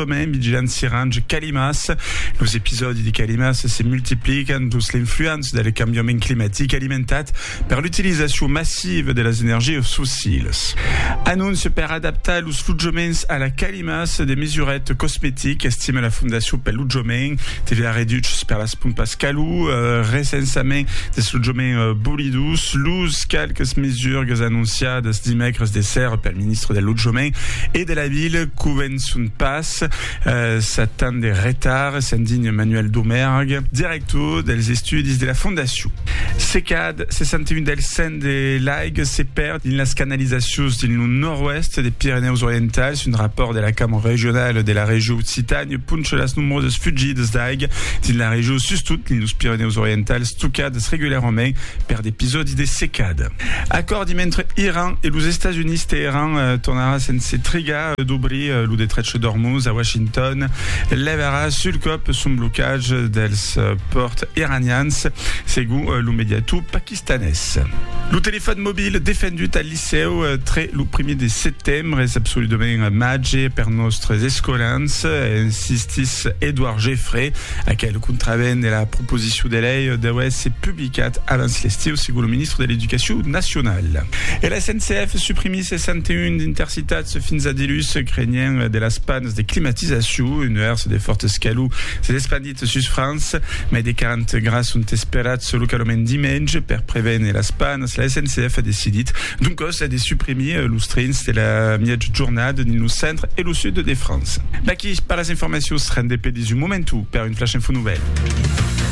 Promèn Vigilant Sirange Calimas Los episòdi de calimas se multiplican dins l'influença del cambiament climatic alimentat per l'utilizacion massiva de las energias fossilas. Anóncia per adaptar los lotjaments a la calimas de mesuret cosmetic, estima la Fondacion pel Lotjament, TVA reduches per las pompas calor, recensament dels lotjaments bolidos, los qualques mesurgas anonciadas dimècres de sèrra pel ministre del Lotjament e de la Vila, Son pas sat tant de retard, se'n digna Manuel Domergue, director dels estudis de la fondacion. Se cad 61 del cent de l'aiga se pèrd dins las canalizacions dins lo nòrd-oèst de Pirenèus Orientals, un rapòrt de la Cambra Regionala de la Regió Occitània poncha las nombrosas fugidas d'aiga dins la regió, sustot dins los Pirenèus Orientals, tocadas regularament per d'episòdis de secada. Acòrdi mentre Iran e los Estats Units, Teheran tornarà sense trigar. dobrir lo detrech d'Ormuz a Washington levarà sul còp son blocatge dels pòrts iranians, segon lo mediator paquistanés. Lo telefòn mobil defendut al licèu tre lo primièr de setembre es absoludament màger per nòstres escolans, insistís Edouard Geffré, aquel contravent de la proposicion de lei deu èsser publicat abans l'estiu, segon lo ministre de l'Educacion nacionala. E la SNCF suprimís 61 d'intercités. Tats fins a dilús, crenhent de las pannes de climatizacion, un nuèrs de fòrtes calor s'es espandit sus França. Mai de 40 grads son esperats localament dimenge. Per prevene las pannes, la SNCF a decidit doncòs de suprimir los trens de la miètja jornada dins lo centre e lo sud de França. D'aquí per las informacions, rendez-pe dins un momentu per un Flash Info Nouvèl.